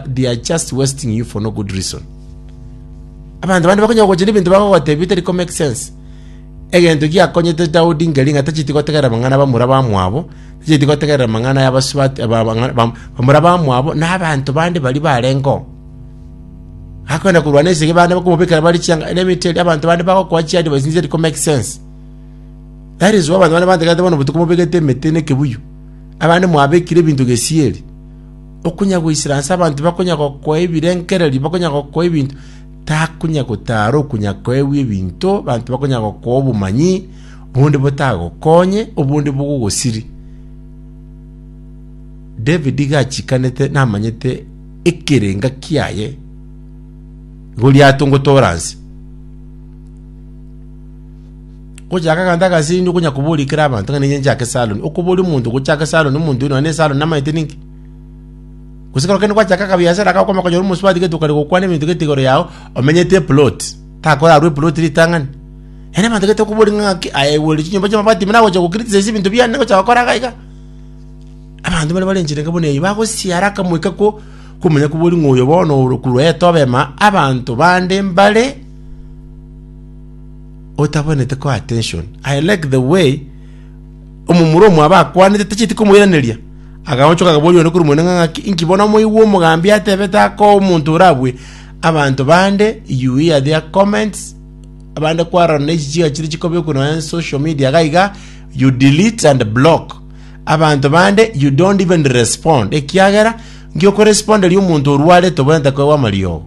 They are just wasting you for no good reason. Abanto bande bakonya gocha n'ebinto bagogotebia bitari ko make sense. Egento giakonyete Daudi ngeri ng'a tacheti gotegerera mang'ana bamura bamwabo, tacheti gotegerera mang'ana y'abasubati ba- bang'a- bam- bamura bamwabo na abanto bande bari barengo. Akwenda kurwana esege bande bakomobekera bari chianga. Let me tell you, abanto bande bagokoa chi advice nizeri ko make sense. That is why abantu bane bantegete bono botuko mobegete emete nekebuyu. Abande mwabekire ebinto gesieri. Okonya goisera nse abanto bakonya gokoa ebirengererio, bakonya gokoa ebinto, takonya gotara okonya koegwa ebinto, abanto bakonya gokoa obomanyi, obonde botagokonye, obonde bogogosiri. David gachikanete namanyete ekerenga kiaye Goliath ngotora nse. Gochaka egento agasindu konya koboria kera abanto ng'a ninye nchake saloni. Okoboria omonto gochake saloni omonto oyo nonye ne saloni namaete ninki? Gose ekero kende gwachaka akabiasara iga okomanya konyora omosubati gete okare gokwana ebinto gete igoro yao omenyete eplot. Takorarwa eplot ritang'ani. Yaani abanto gete okoboria ng'a ng'aki aye egwere chinyomba chi'amabati buna agocha gokriticize ebinto biane gocha gokora iga iga. Abanto bare bare enchera enke buna eyio bagosisia haraka moika ko komanya koboria ng'a oyo bono ore korwa etobema abanto bande mbare otabonete ko attention. I like the way omomura omwabo akwanete tacheti komoiraneria. Agaonchoka akaboria one korwa monenga ng'aki, inki bono omoigwa omogambi atebete aka omonto orabue abanto bande, you hear their comments, abande kwarora na echi chiga chire chikobekwa nonya social media iga iga, you delete and block. Abanto bande you don't even respond ekiagera nki okoresponderia omonto orwarete obwenerete koegwa amariogo.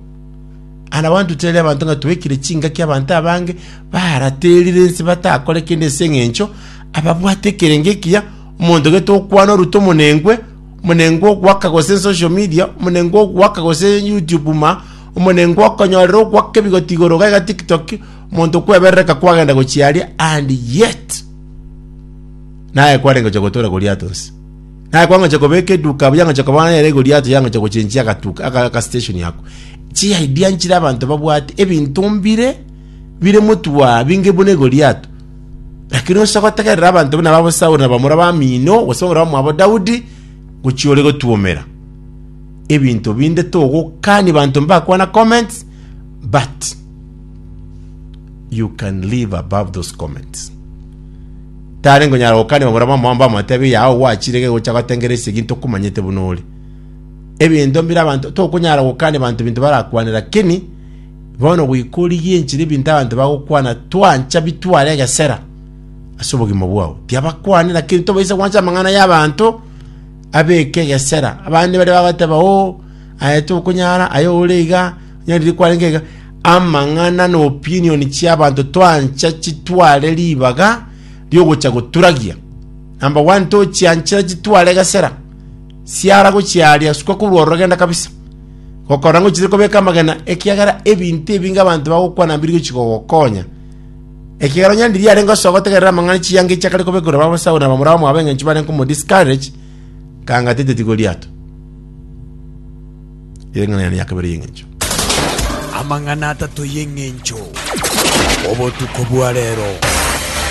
Aye nabaanto tari abanto ng'a twekire chingaki abanto abange baraterire inse batakore kende ase engencho ababwate ekerengo ekiya, omonto gete okwana orute omonengwe, omonengwe ogoaka gose social media, omonengwe ogoaka gose YouTube ma, omonengwe okonyorera ogoaka ebigoti igoro iga iga TikTok, omonto kweberereka kwagenda gochia aria and yet naye kwarengocha gotoora goliato nse. Naye kwangochia kobeka eduka abwo yangochia koba nere igo riato yangochia gochenchia agatuka aka aka station yako. Chi idea nchire abanto babwate ebinto mbire bire motwa binge buna igo riato. Lakini osa gotegerera abanto buna babo Saul na bamura ba mino gose omura mwabo Daudi gochi ore gotuomera. Ebinto binde togokani banto mbakwana comments but You can live above those comments. Tare ngonyara gokania babura mama wamba amatebi yao gwachire gegocha gotengera ese ginto kumanyete buna ore. Ebinto mbira abantu tokonyara gokania bantu binto barakwane lakini bono gwikori ginchire ebinto abantu bagokwana twancha bitware egesera ase obogima bwao. Tiabakwane lakini tobaisa gwancha amang'ana y'abanto abeke egesera. Abande bare bagoteba oh aye tokonyara aye ore iga nyarire kwarenge iga Amang'ana na opinion chiabanto twancha chitware ribaga riogocha goturagia. Number one tochianchera chitware gesera siara gochiaria sukwa korwa ororogenda kabisa. Gokora ng'o chire kobeka amagena ekiagera ebinto ebinge abanto bagokwana mbiri gochi gogokonya. Ekiagera onye ndiri arenge osoa gotegerera amang'ana chiyanga echi akare kobeka korwa babasahu na bamura bamwabo engencho barenge komo discourage kanga tete tigo riato. Ering'ana riane ria kabere y'engencho. Amang'ana atato y'engencho. Obotuko bwa reero.